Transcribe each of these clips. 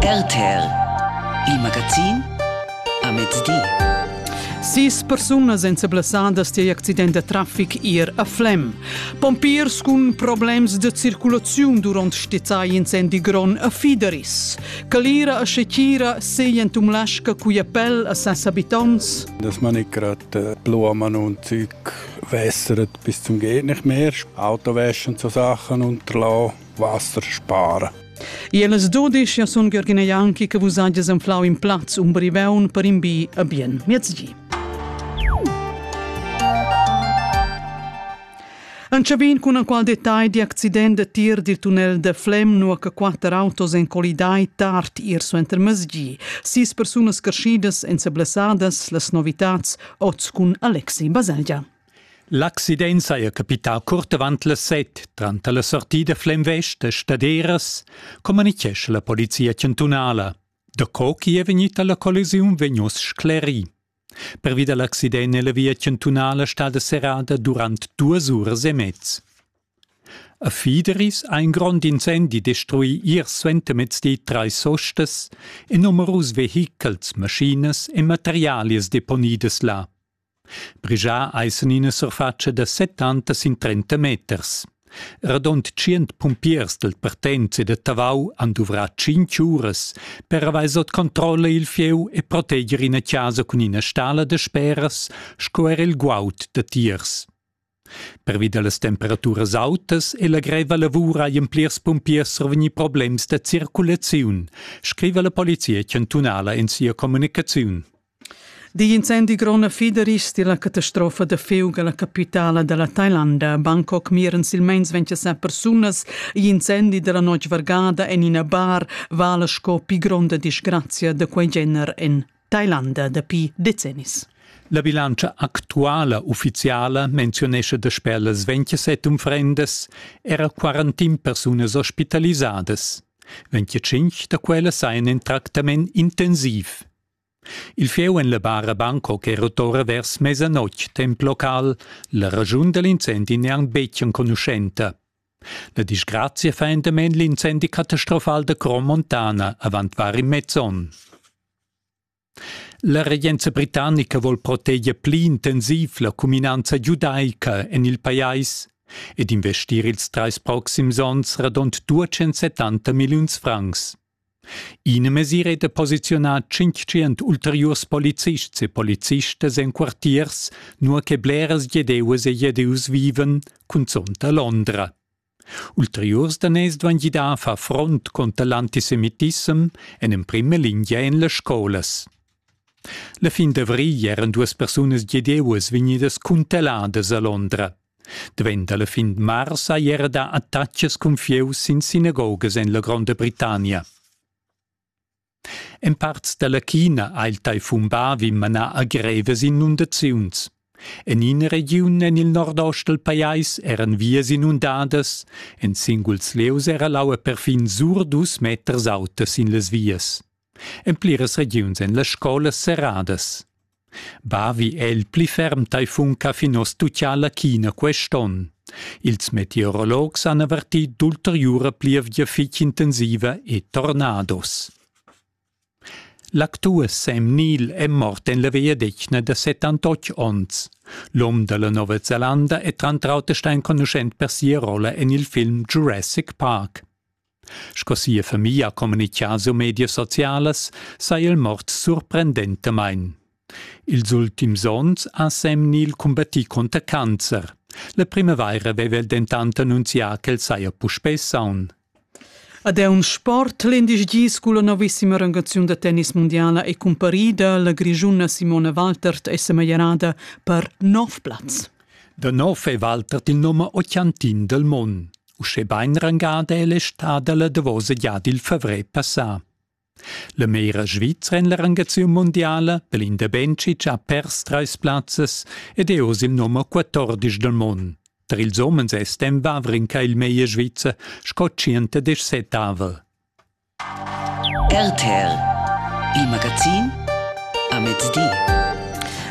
RTL Il magazin a mezdi. Sis persunas èn seblessadas tier accident da traffic ir a Flem. Pompiers cun problems de circulaziun durant stizzai incendi gron a Fideris. Calira a Secira seien tumlasca cuia pel a ses abitants. Das man ich gerade Blumen und Zeug wässert bis zum geht nicht mehr. Autowäsche und so Sachen unterlassen. vaster spara. E las dudisch sun Gürgina Janki che vus hagies enflau in plaz un briveun per in bi a bien miezgi. An Chabin cun qual detagl di accident de tir dil tunnel de Flem nua che quatter autos en colidai tard ir suenter mesgi. Sis persunas crescidas en seblessadas las novitats oz cun Alexi Baselgia. L'accident saja capità curt avant las set. Tranter la sortida Flemvest e Staderas communichescha la polizia chantunala. Daco chi è vegnita la collisiun vegn uss sclerì. Pervi da l'accident è la via chantunala stada serrada durant duas uras e mez. A Fideris ha in grond incendi destruì ier suentermezdi trais ostas e numerus vehichels, maschinas e materialias deponidas là. Brigià eisen ina surfatscha da settantas sin trenta meters. Radond tschient pumpiers dal partent e da Tavau han duvrà tschintg uras per avair sot controlla il fieu e proteger ina chasa cun ina stala da speras sco er il guaud da tiers. Pervi da las temperaturas autas e la greva lavur hajan plirs pumpiers survegnì problems da circulaziun, scriva la polizia chantunala en sia communicaziun. Digl incendi gronda fiderisch tir la catastrofa da fiug alla capitala della Thailanda. Bangkok miren silmeins 27 persunas igl incendi della notg vargada en ina bar vala sco pi gronda disgrazia da quei gener en Tailanda dapi decennis. La bilantscha actuala ufficiala menziunescha dasper las 27 unfrendas era 41 persunas ospitalisadas. 25 da quellas sajan in tractament intensiv. Il fieu en la bara Bangkok è rotora vers mesanotg temp local, la ragiun da l'incendi n'è anc betg enconuschenta. La disgrazia fa endament l'incendi catastrofal da Crom Montana avant var in mez onn. La regenza britannica vuol proteger pli intensiv la cuminanza giudaica en il pajais ed investir ils trais proxims onns radund 270 milliuns francs. Ina mesira è da posiziunar tschintschient ulteriurs polizists e policistas en quartiers, nua che bleras Giedeus e Giedeus vivan, cunzont a Londra. Ulteriurs daners duan gidar a far front conter l'antisemitissem en emprima lingia en las scolas. La fin d'avrigl eran duas persunas Giedeus vegnidas cuntelladas a Londra. Davent alla fin de mars ei era da attachas cun fieu sin sinagogas en la Gronda Britannia. En parts dalla China ha il taifun Bavi manà a grevas inundaziuns. En ina regiun en il nordost dal pajais eran vias inundadas, en singuls lieus era l'aua perfin sur dus meters auta sin las vias. En pliras regiuns èn las scolas serradas. Bavi è il pli ferm taifun ch'ha fin oz tutgà la China quest'onn. Ils meteorologs han avertì d'ulteriura plievgia fitg intensiva e tornados. L'actur Sam Neill è mort en la vegliadetgna da 78 onns. L'um da la Nova Zelanda è tranter auter stà enconuschent per sia rolla en il film Jurassic Park. Sco sia famiglia ha communitgà sur medias socialas saja el mort surprendentamain. Ils ultims onns ha Semnil cumbattì cunter cancer. La primavaira aveva el dentant annunzià ch'el saja puspè saun. Ad è un sport l'indisgi sco la novissima rangaziun da tennis mundiala è cumparida. La grischuna Simona Waltert è semeglierada per nov plaz. Da nov è Waltert il nome occhiantin del mond. Uschè bain rangada è l'estada la davosa gia dil favrer passà. La mera svizra en la rangaziun mundiala per l'Inderbenschic ha pers trais plazzas ed è oz il nummer 14 del mond. Tra ils homens è Stem Wawrinka il meglier svizzer sco 117 avel. RTL Il magazin a mezdi.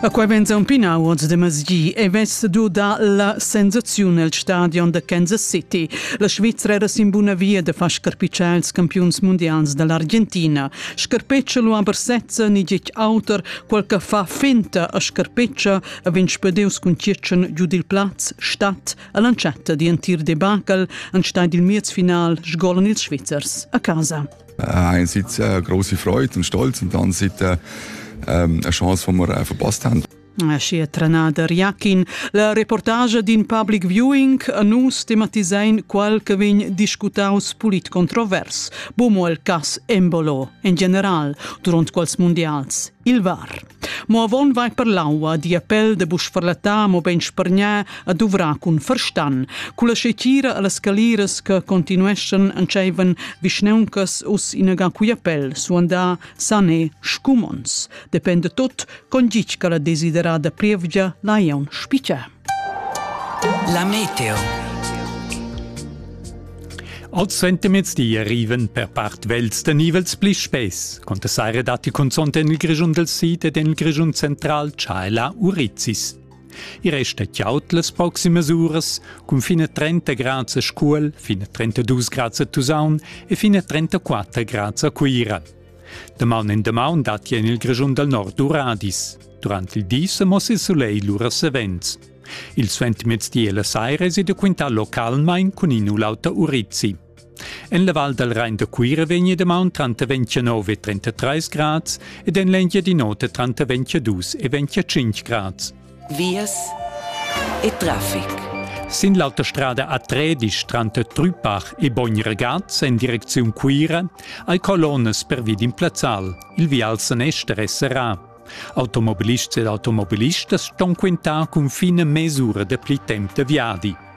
A quai vegn zampina awards de masgi e vess du da la sensaziun el stadion da Kansas City. La Svizzera era sin buna via de far scarpitschar ils campiuns mondials dall'Argentina. Scarpeccia lu aber sezza ni gec auter, quel che fa finta a scarpeccia, a vegn spedius cun tschetschen giu dil plaz, statt, All'entschatta di entir debacle han staid il miez final sgolan ils Svizzers a casa. Ein sitzt eine große Freude und Stolz und dann sieht äh, ähm, eine Chance, die wir äh, verpasst haben. Aschia trenada Riakin, la reportage d'in public viewing a nus tematisein qual che vegn discutaus pulit controvers, bomo el cas embolo, en general, durant quals mondials, il VAR. Mo avon vai per l'aua, di a pel de buc farlatar, mo bein spargnar a duvrar cun ferstan, culla scetira alla scaliras che continueschan entscheivan vischneuncas us inaga cuia pel, suandar sane scumons. Depende tot, con gitg che la desiderada plievgia la iaun spiccia. La meteo. Als Sentiments di arriven per part vels de nivels pli spess, con de saire datti consont en il Grischun del Sid ed en il Grischun central Chaela Urizis. I resta chiaut las proximas uras, cun fine 30 grad a Scuol, fine 32 grad a Tusaun e fine 34 grad a Cuira. Damaun in damaun datti en il Grischun dal nord radis. Durant il di sa mossa il sulegl lura savens. Il suentermezdi e la saira è da quintà localmain cun in u l'auter urizzi. En la val dal Rain da Cuira vegni damaun tranter 29 e 33 grads ed en l'Engiadin'Ota tranter 22 e 25 grads. Vias e Traffic. Sin l'autostrada A3 disch tranter Trüpach e Bogn-Regaz en direcziun Cuira hai colonnas pervi d'in plazzal. Il vial sanester è serrà. Automobilists ed automobilistas ston quintar cun fina mesura dapli temp da viadi.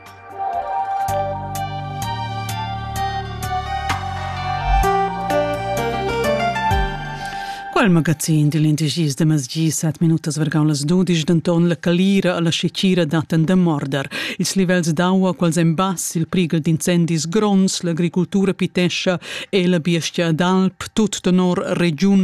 Quel magazin dil indecis de masgi sat minutas vargau las dudisch denton la calira alla secira daten da morder. Ils livels d'aua quals en bass il prighel d'incendis gronds, l'agricultura pitescha e la biestia d'alp, tut tenor regiun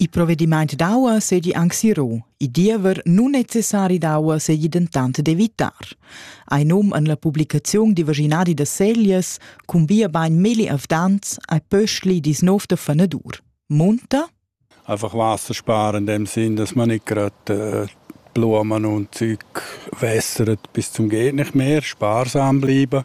Il provedimaint d'aua seigi anc si ro. Il diever nunnecessari d'aua seigi dentant d'evitar. Ei num en la publicaziun di vaginadi da Seglias cun bia bain milli avdants ai pöschli dis nov da fanadur. Munta? Einfach Wasser sparen in dem Sinn, dass man nicht gerade äh, Blumen und Zeug wässert bis zum geht nicht mehr, sparsam bleiben.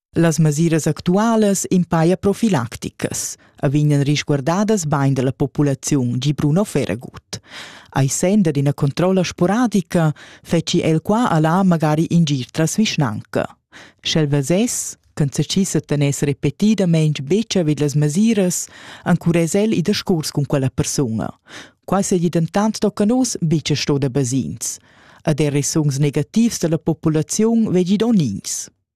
Las mesiras actualas impaia profilacticas e vegnan risguardadas bain da la populaziun, gi Bruno Ferragut. Ai senda d'ina controlla sporadica feci el qua a là magari in gir tras vischnanca. Sch'el vesess ch'en sechissa teness repetidamain betg vid las mesiras, encurez el i discurs cun quella persuna. Quai seigi dentant tocca nus betg sto da basins. Ed er resungs negativs da la populaziun vegi donins.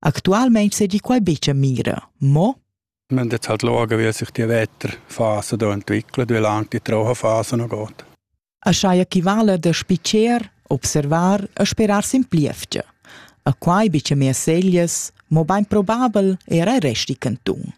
Actualmein segi quai betg a mira, mo Men det halt logen, wie sich die Wetterphase da entwickelt, wie lang die Trauerphase noch geht. A schai equivala da spicer, observar e sperar sin plievgia. A quai bice mia seglies, mo bain probabel era resti cantun.